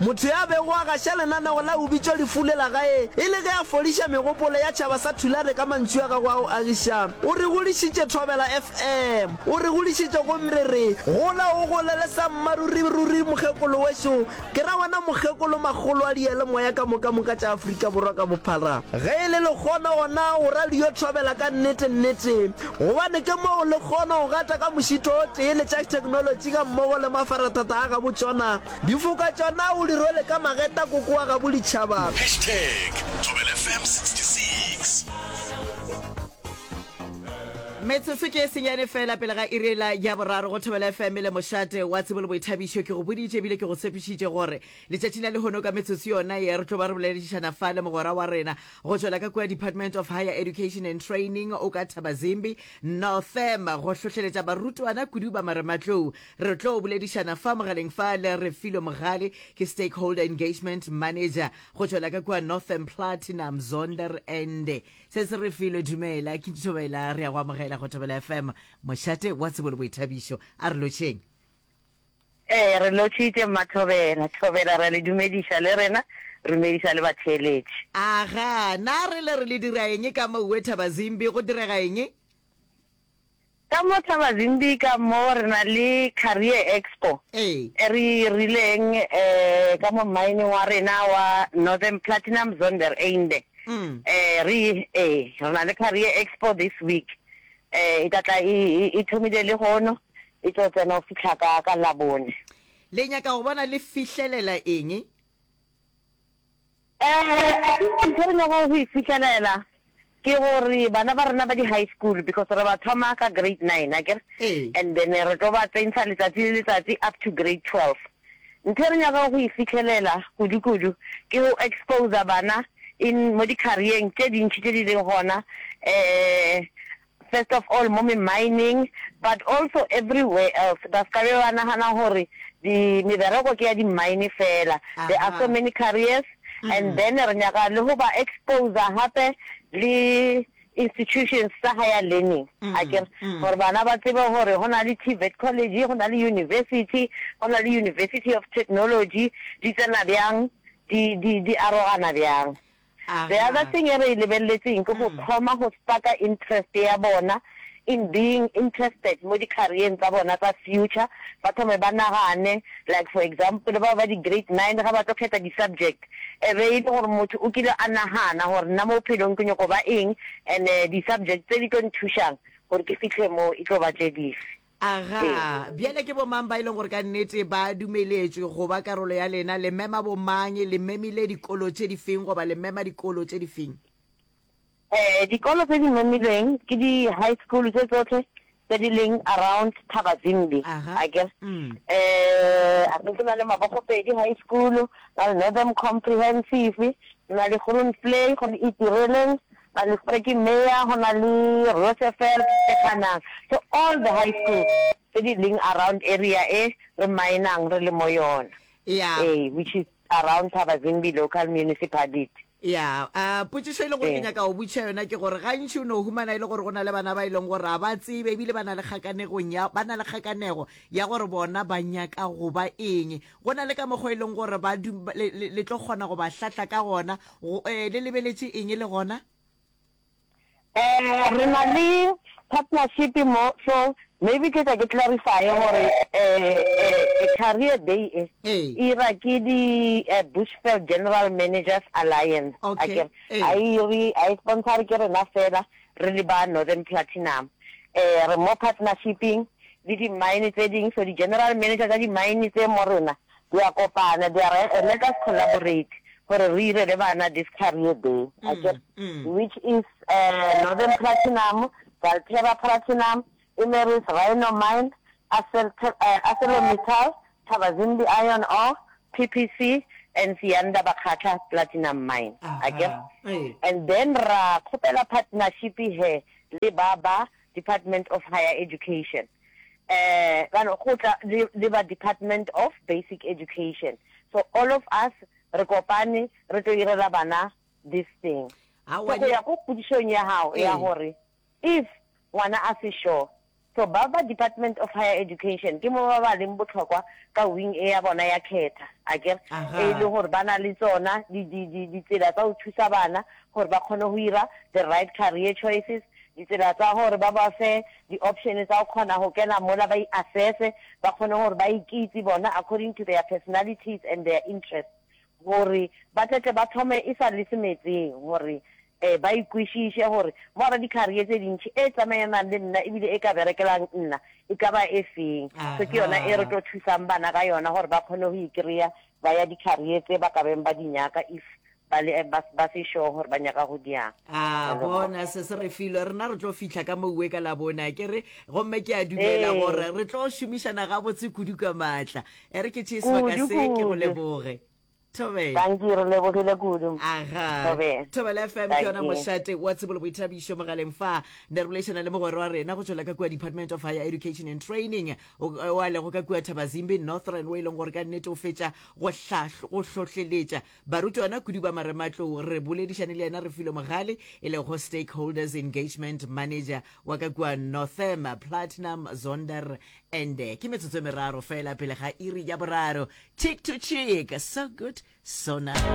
Motho yo a bego a gaša lenaneo la O Bitšwa Lefu le la Gae e le ge a fodiša megopolo ya tšhaba sa Tulare ka mantšu a gagwe a go agiša, o re godišitše Thobela FM. O re godišitše gomme re re, Gola o golele sa mmaruriruri mokgekolo wešo, ke ra wena mokgekolo makgolo a diyalemoya ka moka moka tša Afrika Borwa ka bophara. Ge e le lekgono gona go radio Thobela ka nnete nnete, gobane ke moo le kgono go gata ka mošito o tee le tša theknolotši gammogo le mafarathata a gabotšona, Difoka tša na o di rwele ka mageta koko wa gabo ditšhaba. Hashtag Thobela FM 66. Metsotso ke e senyane fela pele ga irela ya boraro go thobela FM le mošate wa tsebo le boithabišo ke go boditše ebile ke go tshepišitše gore letšatšing la lehono ka metsotso yona ye re tlo ba re boleledišana fa le mogwera wa rena go tšwela ka kua department of higher education and training o ka thabazimbi northam go hlohleletša barutwana kudu ba marematlou Re tlo boledišana fa mogaleng fa le Refilwe Mogale, ke Stakeholder Engagement Manager go tšwela ka kua Northern Platinum Zonderende. Se se Refilwe, dumela, ke Ntšhobela, re ya go amogela go Thobela FM, mošate wa tsebo le boithabišo. A re lotšheng. Ee, re lotšhitše mmaThobela. Thobela, re a le dumediša le rena, re dumediša le batheeletši. Agaa, na re le re le dira eng ka mo Uwe Thabazimbi, go direga eng? Ka mo Thabazimbi ka mo re na le Career Expo e re e rileng ka mo mmaeneng wa rena wa Northern Platinum Zondereinde. Re e re na le Career Expo this week. E tla tla e e thomile le hono e tlo tsena go fitlha ka ka Labone. Le nyaka go bona le fihlelela eng Assignment e re nyakago go e fihlelela ke gore bana ba rena ba di-high school because re ba thoma ka grade nine akere, and then re tlo ba tsentšha letsatsi le letsatsi up to grade twelve. Ntho e re nyakago go e fihlelela kudu-kudu ke go exposer bana in mo di-career-eng tše dintši tše di leng gona um First of all mo mi mining but also everywhere else ba ska be ba nagana gore di mebereko ke ya di mine fela there are so many careers and then re nyaka le go ba exposer gape le institutions tsa higher learning akere gore bana ba tsebe gore go na le TVET college go na le university go na le university of technology di tsena bjang di di di arogana bjang. The other thing e re e lebeleletseng ke go thoma go spark-a interest ya bona in being interested mo di-career-eng tsa bona tsa future, ba thome ba nagane like for example bao ba di-grade nine ga ba tlo kgetha di-subject e be e le gore motho o kile a nagana gore nna mo bophelong ke nyoko ba eng and-e di-subject tse di tlo nthušang gore ke fitlhe moo e tlo ba tše dife. Aga, bjale ke bomang ba e leng gore ka nnete ba dumeletšwe go ba karolo ya lena? Le mema bomang? Le memile dikolo tše di feng goba le mema dikolo tše di feng? Eh, dikolo tse di memilweng ke di-high school tše tsohle tse di leng around Thabazimbi, Aga, a ke re. mm. Eh, a ke na le Mabogopedi High School, na le Northern Comprehensive, na le Groenvlei, go le Itireleng, Ba Listerki Meyer go na le Roosevelt e ganang to all the high schools tse di leng around area e re mainang re le mo yona Yeah. ee which is around Thabazimbi local municipality. Yeah, a potšišo e le gore ke Ee. nyaka go botšiša yona ke gore gantši o no humana e le gore go na le bana ba e leng gore ga ba tsebe ebile ba na le kgakanegong ya ba na le kgakanego ya gore bona ba nyaka go ba eng go na le ka mokgwa e leng gore ba du- ba- le le- le tlo kgona go ba hlahla ka gona Go, eh, le lebeletše eng le gona? Eh, re na le partnership mo, so maybe ke tla ke clarifier gore, eh, eh, eh, Career Day e, Ee. e ira ke di, eh, Bushveld General Managers Alliance, Okay, akere? ee. Ha e iri, ha e sponsor ke rena fela, re le ba Northern Platinum. Eh, re mo partnership-ing le di-mine tse ding, so di-general manager tsa di-mine tse mo rena, Di a kopana, di a re, e-e, let us collaborate gore re irele bana diskari ye tee, a ke re, which is Northern Platinum, Valterra Platinum, Imerys Rhino Mine, Arcelormittal, Thabazimbi Iron Ore, PPC, and Siyanda Bakgatla Platinum Mine, a ke re, and then ra kgopela partnership he le ba ba Department of Higher Education, um ba no go tla le le ba Department of Basic Education, so all of us re kopane re tlo irela bana this thing. So Aowa, go di- ya ko kgodišong ya gago ya Ee. gore if ngwana a se sure, so ba ba Department of Higher Education ke mo ba ba leng botlhokwa ka wing e ya bona ya khetha, a ke re? Aha. e le gore ba na le tsona di- di- di- ditsela tsa go thusa bana gore ba kgone go ira the right career choices, Ditsela tsa gore ba ba fe di option tsa go kgona go kena mola ba i-assesse, ba kgone gore ba ikitse bona according to their personalities and their interests gore ba tletle ba thome e sa le se metseng gore um ba ikwešiše gore mo gare di career tse dintši e tsamaelanang le nna ebile e ka berekelang nna e ka ba e feng. So ke yona e re tlo thusang bana ka yona gore ba kgone go ikreya ba ya di career tse ba ka beng ba di nyaka if Ba le, ba, ba se sure gore ba nyaka go diang. A bona, se se re filwe. Rena re tlo fihla ka mouwe ka Labone, a ke re? Gomme ke a dumela gore Ee. re tlo šomišana gabotse kudu ka maatla. E re ke tšee sebaka Kudu, se, ke go kudu. leboge. Thobela. Dankie, re lebogile kudu. Aga. Thobela. Thobela FM ke yona Dankie. mošate wa tsebo le boithabišo mogaleng fa. Ne re boleišana le mogwera wa rena go tšwela ka kua Department of Higher Education and Training, o, o a lego ka kua Thabazimbi North Run, o e leng gore ka nnete o fetša go hlahlo, go hlohleletša Barutwana kudu ba marematlou re boledišane le yena Refilwe Mogale e lego Stakeholders Engagement Manager wa ka kua Northam Platinum Zonder and ke metsotso e meraro fela pele ga iri ya boraro. Cheek to cheek, so good, so nice.